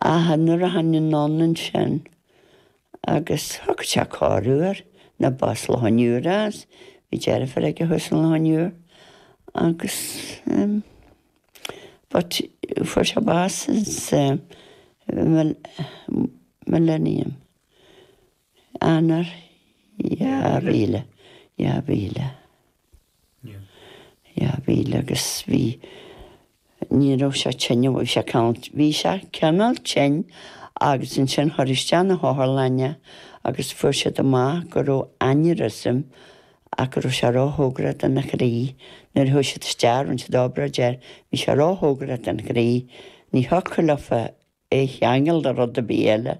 Ach nuair a tháinig anonn ansin agus thug sé cáireadh air, nó bás Lá an Iúir as, bhí deirfiúr aige thuas in Lá an Iúir agus em but fuair sé bás sa Millennium. Eanáir 2000, dhá mhíle, dhá mhíle agus bhí, ní raibh sé tinn, bhí sé cineál, bhí sé cineál tinn agus ansin cuireadh isteach na hotharlainne agus fuair siad amach go raibh aneurysm ach go raibh sé róchóngarach dona chroí nuair a chuaigh siad isteach rinne siad obráid air, bhí sé róchóngarach don chroí, ní thiocfadh leofa é a cheangal le rud ar bith eile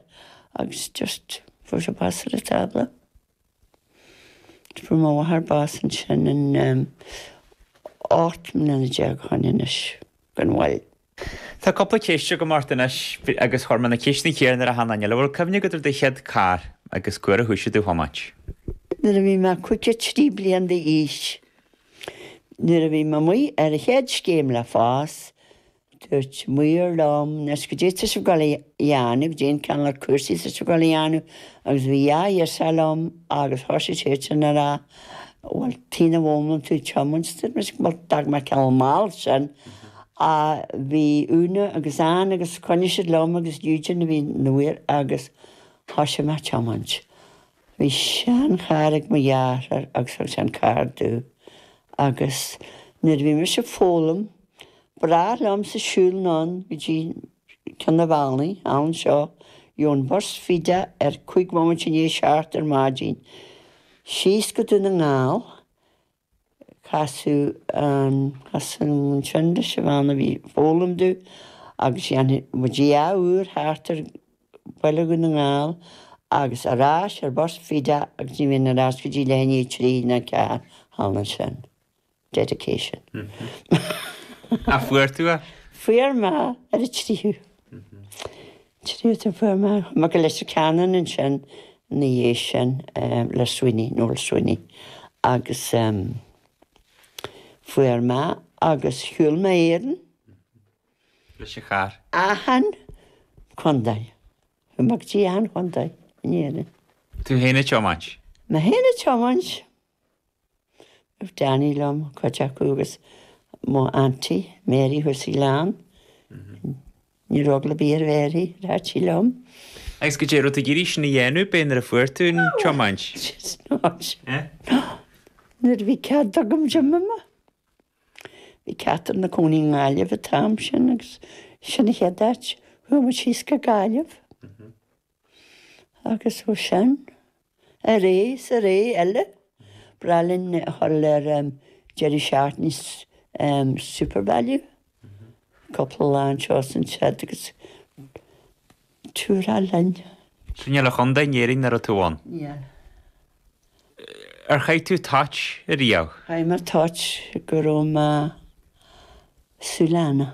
agus just fuair sé bás ar an tábla. Fuair mo mháthair bás ansin in em ocht mbliana déag ó shoin anois gan mhoill. Tá cúpla ceist agam ort anois agus chuir mé na ceisteanna céanna ar achan nduine eile. Bhfuil cuimhne agat ar do chéad carr agus cén uair a thúsaigh tú ag tiomáint. Nuair a bhí mé cúig a trí bliain d'aois, nuair a bhí mé amuigh ar an chéad scéim le FÁS, Dúirt Máire liom, Anois caidé tá tusa ag gabháil a dhéanamh, caidé an ceann de na cúrsaí tá tusa ag gabháil a dhéanamh agus bhí dhá fhios aige liom agus thosaigh sé sin a rá bhuel tuige nach bhfoghlaimíonn tú tiomáint dúirt mise bhuel d'fhág mé ceann mall ansin ach bhí Úna agus Ann agus choinnigh siad liom agus Eugene a bhí nuair agus thosaigh mé a tiomáint. Bhí seancharr ag mo dheartháir agus thug sé an carr domh agus nuair a bhí mise ag foghlaim ba ghnách liomsa siúl anonn go dtí ceann an bhealaigh anseo gheobhainn bus fiche cúig bhomaite i ndiaidh a seacht ar maidin síos go Dún na nGall Casadh an tsean leis an bhean a bhí ag foghlaim domh agus dhéanfadh muid dhá uair thart ar Bhaile Dhún na nGall agus ar ais ar bus faoi deich agus ní bhínn ar ais go dtí leath i ndiaidh a trí nó a ceathair thall ansin. Dedication. Ach fuair tú é. Fuair mé ar an tríú. Tréigthe fuair mé mo Gillespie Canon ansin ina dhiaidh sin le Sweeney, Noel Sweeney, agus fuair mé agus shiúil mé Éirinn. Leis an charr. Achan chontae. Bhí mé go dtí achan chontae in Éirinn. Tú fhéin ag tiomáint? Mé fhéin ag tiomáint. Bhí Danny liom, cuid acu agus mo Aunty Mary chuaigh sí linn. Ní raibh eagla ar bith ar Mary, rachadh sí liom. Agus goidé an raibh tú ag iarraidh sin a dhéanamh bé nuair a fuair tú an tiomáint? Nuair a bhí cead agam tiomáint. Bhí Catherine ina cónaí i nGaillimh an t-am sin agus sin an chéad áit a chuaigh muid síos go Gaillimh. Agus ó sin, ar ais is ar ais eile. Breá linn a dhul ar deireadh seachtaine Supervalu cúpla lá anseo is ansiúd agus tura linn. So níl aon chontae in Éirinn nach raibh tú ann? Níl. Ar chaith tú toit ariamh? Chaith mé toit go raibh mo shúile.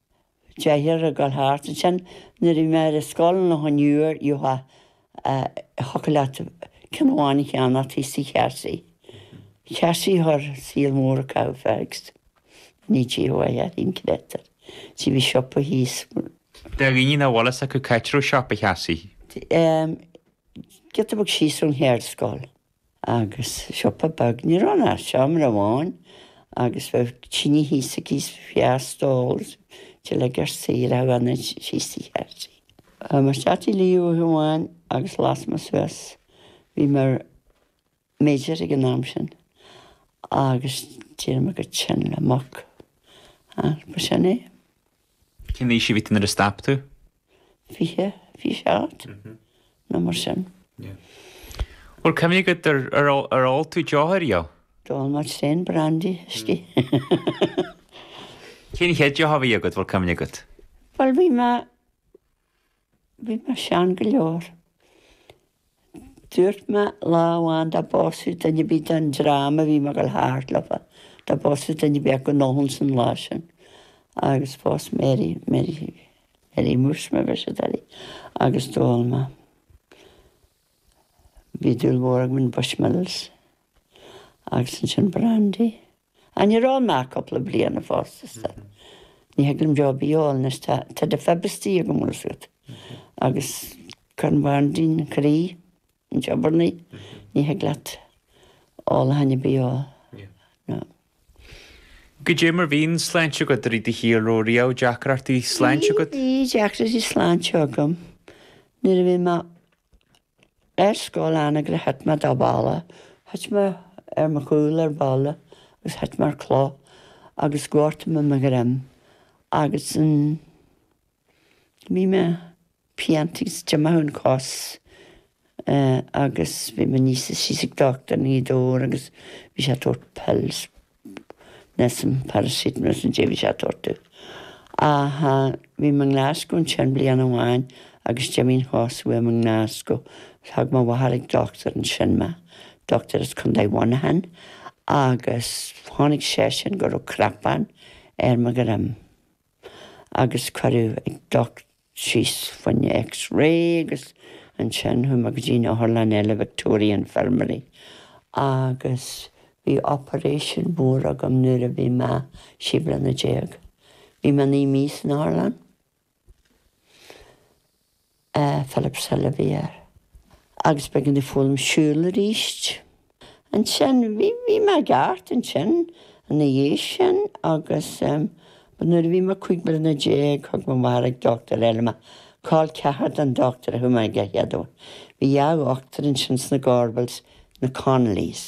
Díreach ag dul thart ansin. Nuair a bhí mé ar an scoil an lá nior ith a thiocfadh leat ceann amháin a cheannach thíos tigh Chearsaí. Cearsaí thoir saol mór acu fags. Ní taobh amuigh a ithfinn creidtear. Sea bhí siopa thíos. Deir daoine nach bhfuil a fhios acu cáit a raibh siopa Chearsaí. Sea. Giota beag síos ón cheardscoil. Agus siopa beag, ní raibh ann ach seomra amháin agus bheadh tine thíos aici is bhí stól is bhí na gasúraí ag tarraingt síos tigh Chearsaí. Bhí mé istigh lá amháin agus las mé suas, bhí mé ar Major ag an am sin, agus d'éirigh mé chomh tinn le muc. Agus ba sin é. Cén aois a bhí tú nuair a stop tú? Fiche, fiche seacht, nó mar sin. Bhfuil cuimhne agat ar ar ól tú deoch ariamh? D'ól mé sin, Brandy, Huiscí. Cén chéad deoch a bhí agat, bhfuil cuimhne agat? Bhuel bhí mé. Bhí mé sean go leor. Dúirt mé lá amháin dá bpósfaí duine ar bith den dream a bhí mé ag dul thart leo, dá bpósfaí duine ar bith acu go n-ólfainn an lá sin. Agus phós Mary, Mary, Mary Muiris mar a bheir siad uirthi, agus d'ól mé. Bhí dúil mhór agam in Bushmills agus ansin Brandy. Thriail mé cúpla bliana fosta. Ní thig liom deoch ar bith a ól anois tá tá defib istigh agam bhfuil a fhios agat. Agus Corn Bháirdín Croí ag obair ní thig leat alcohol ar bith a ól. Ná. Goidé mar a bhíonn sláinte agat i rith do shaoil an raibh riamh deacrachtaí sláinte agat? Bhí deacrachtaí sláinte agam nuair a bhí mé Ar scoil in Anagaire thit mé de bhalla, thit mé ar mo chúl ar balla agus thit mé ar chloch agus ghortaigh mé mo dhroim agus an bhí mé i bpianta agus d'imigh an chos agus bhí mé aníos is síos ag dochtúir i nGaoth Dobhair agus bhí sé ag tabhairt pills. Nessun paracetamol is na deimhin is atá orthu. Ach bhí mé i nGlaschú ansin bliain amháin agus d'imigh an chos uaim i nGlaschú. Thug mo mháthair ag dochtúir ansin mé, dochtúir as Contae Mhuineacháin, agus chonaic seisean go raibh cnapán ar mo dhroim agus cuireadh ag dochtúir. síos fá choinne X Ray agus ansin chuaigh mé go dtí an otharlann eile Victoria Infirmary agus bhí operation mór agam nuair a bhí mé sé bliana déag. Bhí mé naoi mí san otharlann. Philipshill a bhí air. Agus b'éigean domh foghlaim siúl arís. Ansin, bhí, bhí mé i gceart ansin ina dhiaidh sin agus em, but nuair a bhí mé cúig bliana déag thug mo mháthair ag dochtúir eile mé, col ceathar don dochtúir a chuaigh mé aige an chéad uair. Bhí dhá dhochtúir ansin sna Gorbals, na Connollys,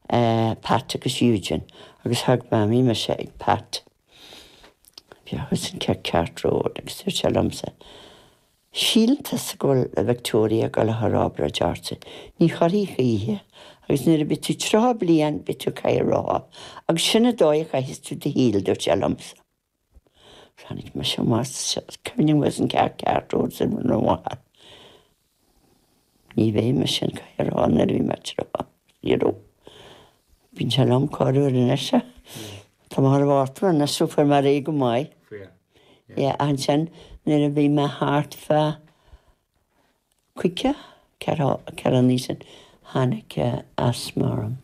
eh, Pat agus Eugene agus thug mo mhamaí mise ag Pat, bhí sé thuas in Cathcart Road agus dúirt sé liomsa, Síleann tusa go bhfuil an Victoria ag gabháil a chur obráid ort, ní chuirfidh choíche, agus nuair a bheidh tú tríocha bliain beidh tú i gcathaoir rotha, agus sin an dóigh a chaithfeas tú do shaol, dúirt sé liomsa. Tháinig mise amach is cuimhin liom ar an Cathcart Road is mo mháthair. Ní bheidh mise i gcathaoir rotha nuair a bheidh mé tríocha. Bíonn sé liom corruair anois. Tá mé thar bhartla anois so fuair mé ar aghaidh go maith. Yeah, ansin nuair a bhí mé thart fá chúig, ceithre ceithre bliana ó shin, tháinig asthma orm,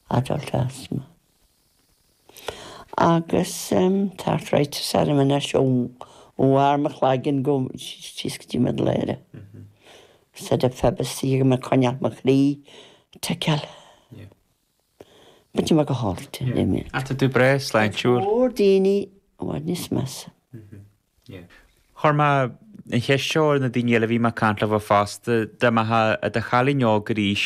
adult asthma. agus tá Fred Salmon as ó Bharr na Claigeann go síos go dtí Middle Eire. Said a Phoebus í ag coinneáil mo chroí te ceal. Bíonn mé go hálainn de. Tá tú breá sláintiúil. Go mór daoine i bhfad níos measa. Chuir mé an cheist seo ar na daoine eile a bhí mé ag caint leo fosta, dá mbeifeá i do chailín óg arís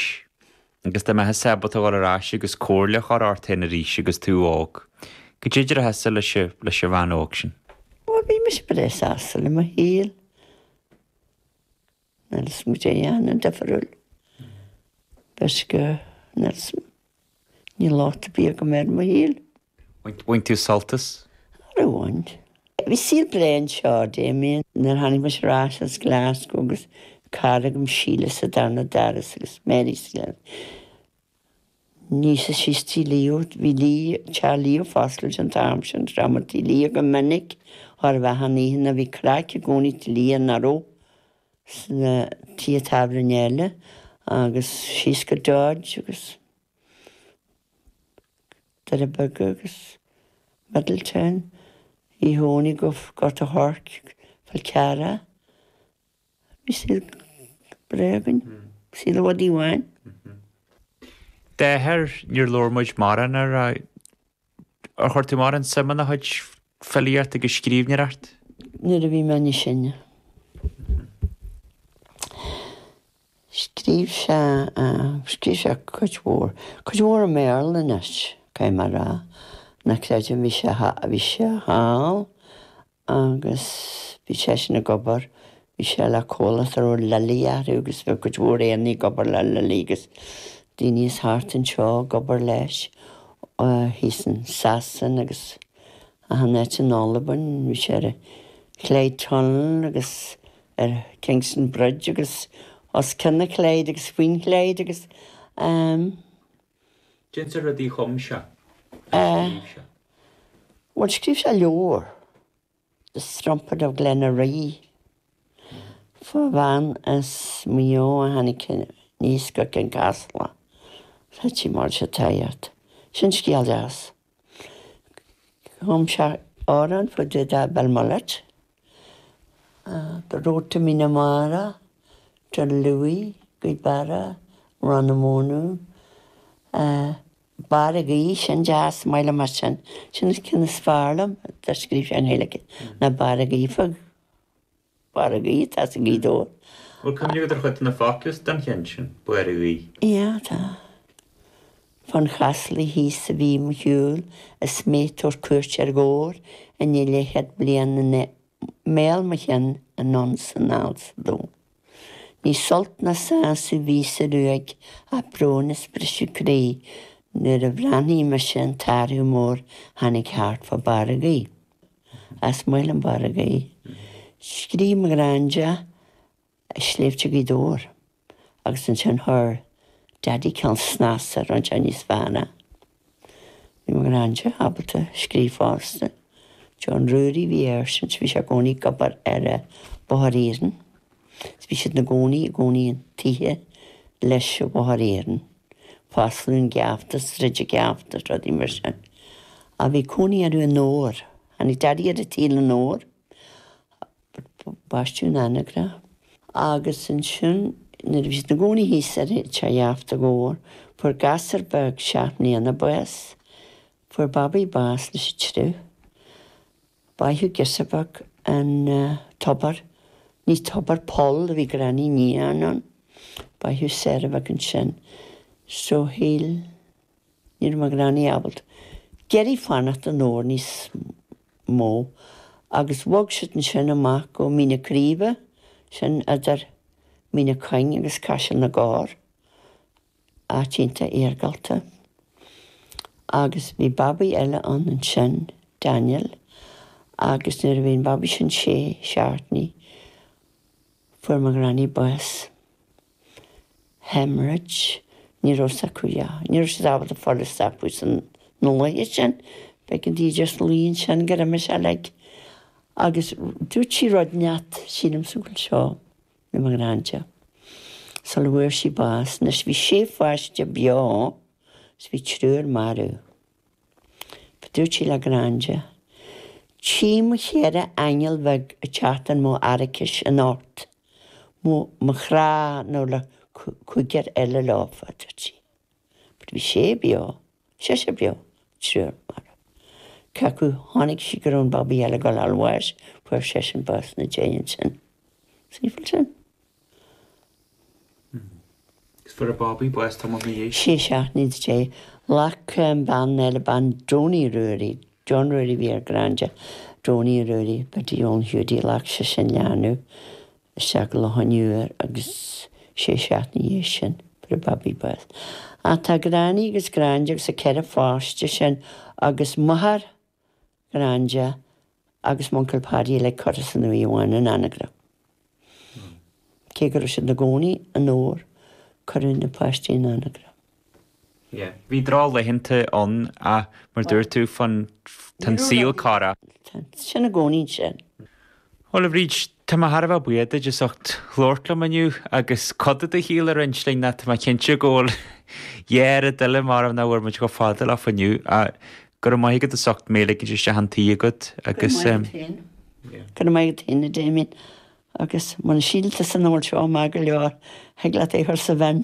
agus dá mbeifeása ábalta dul ar ais agus comhairle a chur ort féin arís agus tú óg, cad é a déarfása leis an bhean óg sin? Bhuel, bhí mise breá sásta le mo shaol. Níl 'fhios a'm cad é a dhéanfainn difriúil. Toisc go, níl 'fhios a'm, níl lá te bia agam ar mo shaol. Bhain tú sult as? Nár bhain. Bhí saol breá anseo, Damien. Nuair a tháinig mise ar ais as Glasgow agus cara agam, Síle, sa darna doras agus Mary sa gcead, ní sa síos tigh Leo, bhí Leo, teach Leo ag foscailt an t-am sin, go raibh muid tigh Leo go minic thar an mheán oíche, ná bhí craic i gcónaí tigh Leo nach raibh sna tithe tábhairne eile agus síos go Dodge agus. Doirí Beaga agus Middletown, Uí Dhónaill go Gort a' Choirce, Fál Carrach, bhí saol breá againn, saol i bhfad ní b'fhearr. D'athair, níor labhair muid mórán air, ar chuir tú mórán suim ina chuid filíocht agus scríbhneoireacht? Nuair a bhí mé níos sine. Scríobh sé, scríobh sé cuid mhór, cuid mhór i mBéarla anois, caithfidh mé a rá. Ná creidim, bhí sé, bhí sé thall agus bhí seisean ag obair, bhí sé le comhlacht a raibh Lilley orthu agus bhí cuid mhór Éireannaigh ag obair le Lilley agus daoine as thart anseo ag obair leis, thíos in Sasana agus achan áit, in Albain, bhí sé ar an Clyde Tunnel agus. ar Kingston Bridge agus os cionn na Clyde agus faoin Clyde agus ehm. Cén sórt rudaí a chum sé, nó scríobh sé? Bhuel, scríobh sé leabhar, The Strumpet of Glenaree. Fá bhean as Maigh Eo a tháinig aníos go Kincasslagh. Feicfidh mar is atá ort. Sin scéal deas. Chum sé amhrán fá dtaobh de Belmullet, The Road to Meenamara, Dún Lúiche, Gaoth Beara, Rann na Mónadh, Barr a' Gaoith, sin deas, maith liom é sin, sin an ceann is fearr liom a scríobh sé i nGaeilge, ná Barr a' Gaoith. Barr a' Gaoith, tá sé go deas. Bhfuil cuimhne agat ar chuid de na focla den cheann sin, Barr a' Gaoith? Ia, tá. Fán Chaslaigh thíos a bhí mo shiúl, is mé ag tabhairt cuairt ar gcúl i ndiaidh leithchéad bliain i mbéal mo chinn anonn 's anall sa dú. Ní sult ná sásamh a bhí sa ruaig ach brón is briseadh croí nuair a bhreathnaigh mise an t-athrú mór tháinig thart fá Bharr a' Gaoith. is maith liom Barr a' Gaoith. Scríobh mo ghranda, Sléibhte Ghaoth Dobhair agus ansin chuir Daddy cineál snas ar an Chinese Fa na. Bhí mo ghranda ábalta scríobh fosta. John Ruairí a bhí air sin, so bhí sé i gcónaí ag obair ar an bhóthar iarainn. Is bhí siad ina gcónaí i gcónaí i dtithe leis an bhóthar iarainn, Foslane Geafta, Sraide Geafta, rudaí mar sin. Ach bhí cónaí orthu in Ór. Tháinig Daidí ar an tsaol in Ór, baisteadh in Anagaire é agus ansin nuair a bhí siad ina gcónaí thíos ar Teach Gheafta i gComhar, fuair gasúr beag seacht mbliana bás, fuair babaí bás leis an triuch. Báitheadh girseach bheag i dtobar, ní tobar poll a bhí Granny ag níochán ann. Báitheadh Sarah Bheag ansin. So shíl, ní raibh mo Ghranny ábalta, deiridh fanacht in Ór níos mó agus bhog siad ansin amach go Mín na Craoibhe, sin idir Mín na Cuinge agus Caiseal na gCorr, Áit iontach iargúlta. Agus bhí babaí eile ann ansin, Daniel, agus nuair a bhí an babaí sin sé seachtainí, fuair mo ghranny bás. Haemorrhage. Ní raibh fhios acu yeah. Ní raibh siad ábalta an fhuil a stopadh sna laetha sin. B'éigean dí just luí ansin gur imigh sí like. Agus dúirt sí rud inteacht, sílim sa bhfuil seo. le mo Ghranda sula bhfuair sí bás. Anois bhí sé pháiste beo agus bhí triúr marbh. But dúirt sí le Granda, Tchím mo cheithre aingeal bheag ag teacht in mo araicis anocht, ó mo chrá nach bhfuil an cúigear eile leofa, dúirt sí. But bhí sé beo. Seisear beo, triúr marbh. Cé acu chonaic sí go raibh an babaí eile ag gabháil a fháil bháis, fuair seisean bás na déidh ansin. Is aoibhinn sin. Agus fuair an babaí bás tamall na dhiaidh. Sé seachtainí na déidh. Ghlac bean eile, bean Johnny Ruairí, John Ruairí a bhí ar Granda, Johnny Ruairí, Biddy Eoin Hiúdaí, ghlac sise an leanbh. isteach go Loch an Iúir agus sé seachtainí na dhiaidh sin fuair an babaí bás. Ach tá Granny agus Granda agus an ceithre pháiste sin agus máthair Ghranda agus m'uncail Paddy uilig curtha san uaigh amháin in Anagaire. Cé go raibh siad na gcónaí in Ór cuireadh na páistí in Anagaire. yeah bhí drochlaethanta ann ach mar dúirt tú féin tá an saol ag athrú. sin i gcónaí ansin. Bhuel a Bhríd, tá mé thar a bheith buíoch duit as ucht labhairt liom inniu agus cuid de do shaol a roinnt linn ach tá mé cinnte go bhfuil dhá oiread eile maram nach bhfuair muid chomh fada leofa inniu ach go raibh maith agat as ucht mé a ligint isteach chun an tí agat agus go raibh maith agat féin go raibh maith agat féin a Damien agus muna síltear an rud seo maith go leor thig leat é a chur sa bhin.